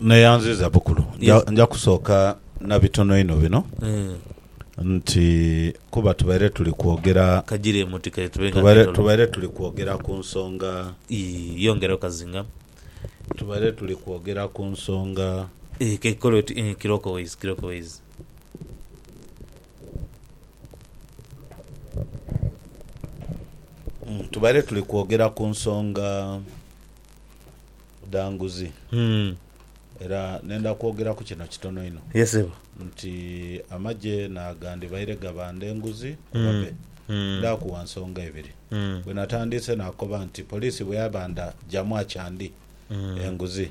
Neyanziza bukulu nja, nja kusooka na bitono inho bino Eh, nti kuba tubaire tuli kwogera kajire emutikaire tube nga tubaire, netolo. tubaire tuli kwogera ku nsonga Ii, yongera okazinga. tubaire tuli kwogera ku nsonga Eh, kekikole oti, eh, kirooko ways, kirooko ways. Tubaire tuli kwogera ku nsonga dha nguzi era nenda kwogera ku kino kitono inho nti amagye naagandhibaire gabanda enguzi oba me. Ndhakugha nsonga ibiri. Bwe natandiise naakoba nti poliisi bwe yabanda jamu akyandi enguzi.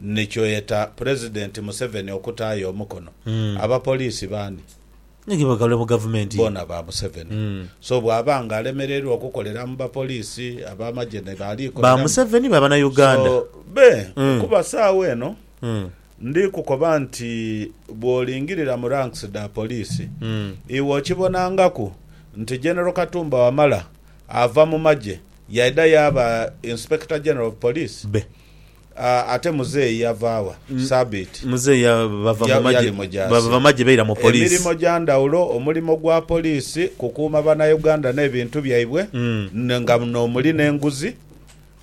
ni kyoyeta Pulezidenti Museveni okutaayo omukono, abapoliisi baani? Ni ge bagalwe mu gavumenti ye? Boona ba Museveni. So bwaba nga alemereirwa okukolera mu bapoliisi, abamagye ni baali koleramu? Ba Museveni ba Banauganda? So be, kuba saagha eno ndi kukoba nti bwolingirira mu ranks dha poliisi, iwe okibonangaku nti General Katumba Wamala ava mu magye yaidha yaaba Inspector General of Police? Be. Ate muzeeyi yava wa? Sabiiti. Muzeeyi bava mu magye. Yali mujaasi. Bava magye baira mu poliisi. Emirimo gya ndhawulo, omulimo gwa poliisi kukuuma Bannayuganda n'ebintu byaibwe nga n'omuli n'enguzi.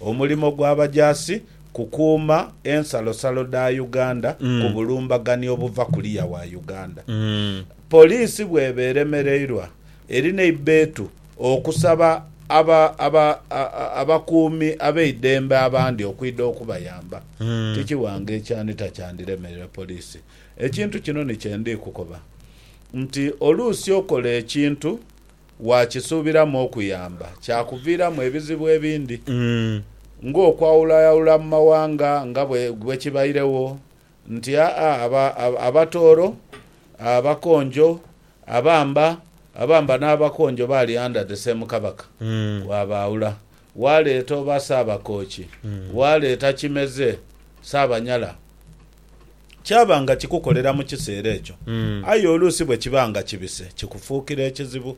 Omulimo gw'abajaasi kukuuma ensalosalo dha Uganda ku bulumbaganyi obuva kuliya wa Uganda. Poliisi bw'eba eremereirwa, eri n'eibbeetu Okusaba aba, aba, abakuumi ab'eidembe abandi okwidha okubayamba tikiwanga ekyani takyandiremerera poliisi. Ekintu kino ni kye ndi kukoba nti oluusi okola ekintu waakisuubiramu okuyamba kyakuviiramu ebizibu ebindi ng'okwawulayawula mu mawanga nga bwe kibairegho Nti, Aa, aba, aba, abatooro, abakonjo, abamba, abamba n'abakonjo baali under the same Kabaka. Waabaawula. Waaleeta oba Ssaabakooki, waaleeta Kimeze, Ssaabanyala. Kyaba nga kikukolera mu kiseera ekyo. Aye oluusi bwe kiba nga kibise, kikufuukira ekizibu.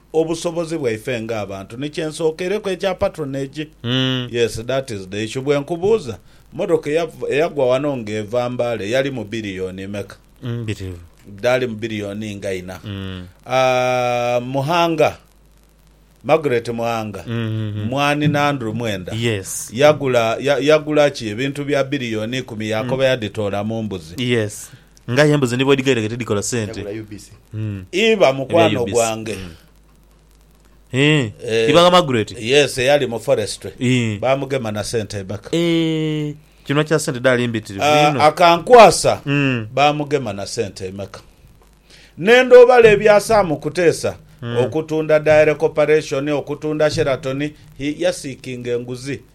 Obusobozi bwaife nga abantu ni kye nsokeireku ekya patronage. Yes that is the issue. Bwenkubuuza, motoka eya eyagwa wano nga eva Mbale yalimu billion meka? Mbitirivu. Dhaalimu billion nga inha. Aah Muhanga, Margaret Muhanga, Mwani na Andrew Mwenda Yes. yagula ya yagula ki ebintu bya billion ikumi yakoba yadhitoola mu mbuzi. Yes. Nga aye embuzi ni bwedhigairaga tidhikola sente. Iba mukwano gwange. Ibanga Margaret. Yes eyali mu forestry bamugema na sente eback. Kinhwa kya sente dhaali mbitirivu inho. Akankwasa bamugema na sente emeka. Nenda obala ebya Sam Kutesa okutunda Diary Corporation, okutunda Sheraton, he ya seekinga enguzi.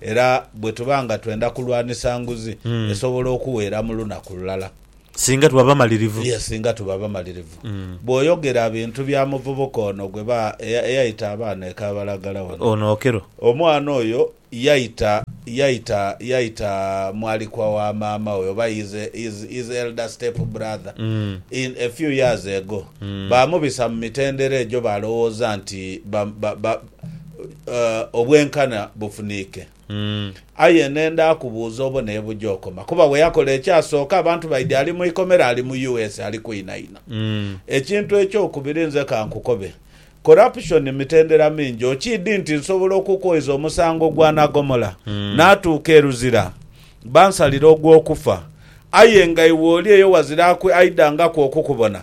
Era bwe tuba nga twenda kulwanisa nguzi, esobola okuwera mu lunaku lulala. Singa tuba bamalirivu. Ye singa tuba bamalirivu. Bw'oyogera bintu bya muvubuka ono gwe ba, eyaita abaana e Kabalagala wano. Ono Okello. Omwana oyo yaita, yaita, yaita mwalikwa wa maama we, oba his, his, his elder step brother, in a few years ago. Baamubisa mu mitendera egyo baalowooza nti ba, ba, ba, obwenkana bufuniike. Aye ne ndaakubuuza obone ye buja okoma. Kuba we yakola ekyasooka, abantu baidhi ali mu ikomera, ali mu US ali kwinaina. Ekintu ekyokubiri nze ka nkukobe, corruption mitendera mingi. Okiidhi nti nsobola okukwoiza omusango gwa nagomola naatuuka e Luzira bansalire ogw'okufa, aye nga iwe oli eyo wazira aidhangaku okukubona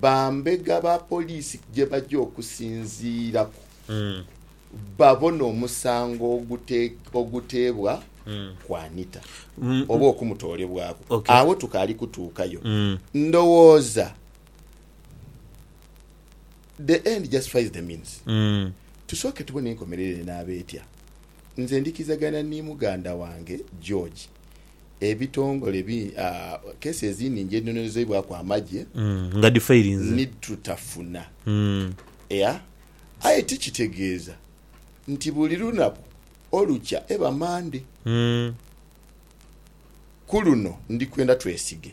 Bambega ba poliisi gye baja okusinziiraku babone omusango oguteebwa ku Anita oba okumutoolebwaku, agho tukaali kutuukayo. Ndowooza the end justifies the means. Tusooke tubone enkomerero enaaba etya. Nze ndhikirizagana ni muganda wange George Ebitongole bi, aah, kesi ezindi nje nonozeibwaku amagye. Mm, nga dhi failinze. Ni tutafuna. Mm. Ea, aye ti kitegeeza nti buli lunaku olukya eba Mande. Mm. Ku luno ndi kwenda twesige.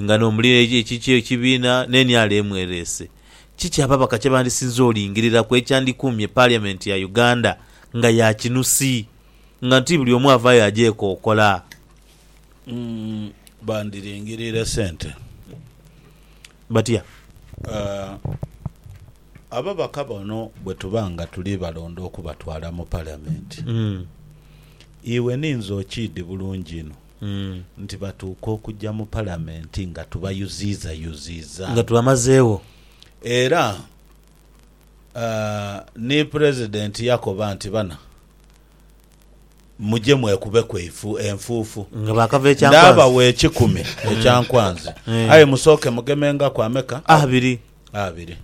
Nga n'omuli ekikyo ekibiina n'eniala emwereese, kiki ababaka kye bandisinze olingiriraku ekyandikuumye Parliament ya Uganda nga ya kinusi nga ti buli omu avaayo agyekokola? Bandiringirire sente. Batya? Ababaka bano bwe tuba nga tuli balonda okubatwala mu Parliament, iwe ninze okiidhi bulungi inho. Nti batuuka okugya mu Palamenti nga tubayuziizayuziiza. Nga tubamazeegho. Era ni Pulezidenti yakoba nti, Bana, muje mwekubeku enfuufu. Nga baakava e Kyankwanzi. Ndaabawa ekikumi ekya nkwanzi. Aye musooke mugemengaku ameka? Abiri. Abiri.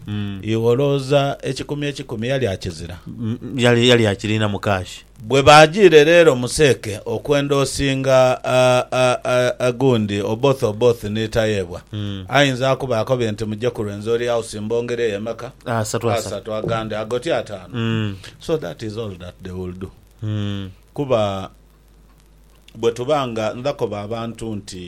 Iwe olowooza ekikumi ekikumi yali akizira? Yali, yali akirinamu kaashi. Bwe baajiire leero mu seeke okwenda osinga a, a, a, a, gundi, Oboth, Oboth ni Tayebwa, ayinza akuba akobye nti, Muje ku Rwenzori House mbongere yo emeka? Asatu, asatu. Asatu, agandi agotyo ataanu. So that is all that they will do. Kuba bwe tuba nga ndhakoba abantu nti.